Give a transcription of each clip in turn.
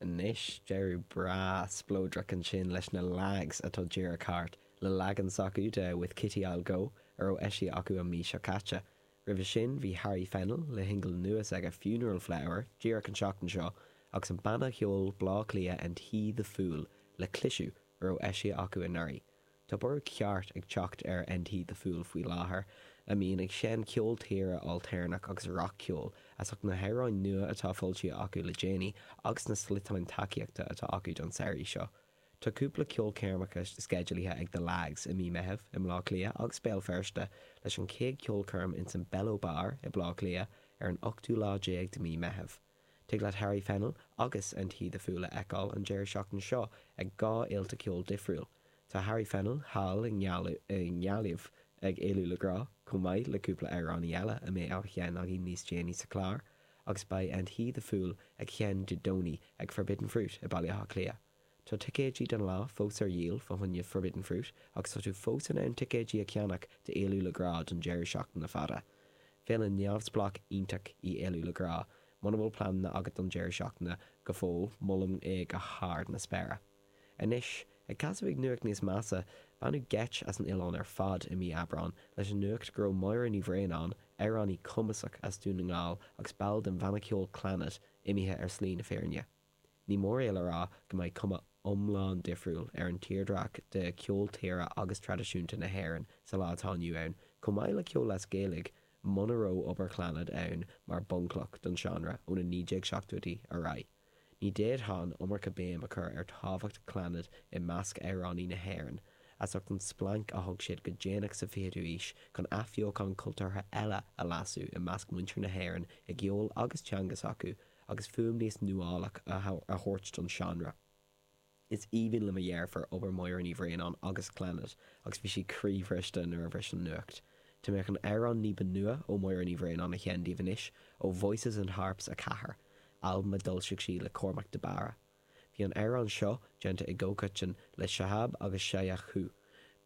Anois, deireadh breá spleodrach ansin leis na Lags atá díreach thart, le leagan s'acu de 'With Kitty I'll Go' a raibh eisithe acu an mhí seo caite. Roimhe sin bhí Harry Fennell le hsingil nua s'aige 'Funeral Flower' díreach an tseachtain seo agus an banna cheoil Bleá Cliath 'And He the Fool' le 'Clisiú', a raibh eisithe acu anuraidh. Tá borradh ceart ag teacht ar And He the Fool faoi láthair, a mbíonn ag seinm ceol tíre ailtéarnach agus rac-cheoil, as ucht na hamhráin nua atá foilsithe acu le déanaí agus na sliotáin tacaíochta atá acu don samhraidh seo. Tá cúpla ceolchoirmeacha sceidealaithe ag The Lags i mí Meitheamh i mBleá Cliath agus Béal Feirste, leis an chéad cheolchoirm insan Bello Bar i mBleá Cliath ar an ochtú lá déag de mí Meitheamh. Tig leat Harry Fennell agus and He the Fool a fheiceáil an deireadh seachtaine seo ag dhá fhéilte ceoil difriúil. Tá Harry Fennell thall i nGaillimh ag Éalú le Grá, chomh maith le cúpla amhránaí eile a mbeidh á sheinn againn níos déanaí sa chlár, agus beidh and He the Fool ag sheinn Dé Domhnaigh ag Forbidden Fruit i Baile Átha Cliath. Tá ticéidí don lá fós ar dhíol fá choinne Forbidden Fruit agus tá tú fós in ann ticéidí a cheannach d'Éalú le Grá don deireadh seachtaine fada. Féile neamhspleách iontach í Éalú le Grá, muna bhfuil pleananna agat don deireadh seachtaine go fóill, molaim é go hard na spéire. Anois, ag casadh chuig nuacht níos measa, baineadh geit as an oileán ar fad i mí Aibreán leis an nuacht go raibh Máire Ní Bhraonáin, amhránaí cumasach as Dún na nGall agus ball den bhanna ceoil Clannad, imithe ar shlí na fírinne. Ní mór dom a rá go mbeidh cuma iomlán difriúil ar an tírdhreach de cheol tíre agus traidisiúnta na hÉireann sa lá atá inniu ann, chomh maith le ceol as Gaeilge, muna raibh obair Chlannad ann mar bhunchloch don seánra ó na 1970idí ar aghaidh. Ní d'fhéadfadh an iomarca béim a chur ar tábhacht Chlannad i measc amhránaí na hÉireann, as ucht an splanc a thug siad go déanach sa 20ú aois chun athbheochan cultúrtha eile a lasadh i measc muintir na hÉireann i gceol agus teanga s'acu, agus fuaim níos nuálach a thabhairt don seánra. Is aoibhinn le mo dheirfiúr obair Mháire Ní Bhraonáin agus Clannad agus bhí sí croíbhriste nuair a bhris an nuacht. Tá mé chun an amhrán ní ba nua ó Mháire Ní Bhraonáin a sheinn daoibh anois, ó Voices and Harps 4, albam a d'fhoilsigh sí le Cormac de Barra. Bhí an amhrán seo déanta i gcomhchoitinn le Shahab agus Shayan Coohe,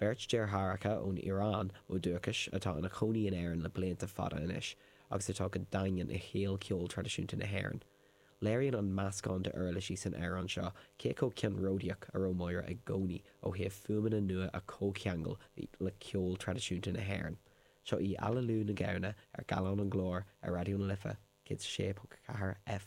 beirt deartháireacha ón Iaráin ó dhúchais atá ina chónaí in Éirinn le blianta fada anois agus atá go daingean i shaol cheol traidisiúnta na hÉireann. Léiríonn an meascán d'uirlisí san amhrán seo cé chomh ceannródaíoch a raibh Máire i gcónaí ó thaobh fuaimeanna nua a chomhcheangal le ceol traidisiúnta na hÉireann. Seo í Aililiú na Gamhna ar Gallán an Ghlóir ar Raidió na Life 106.4 F.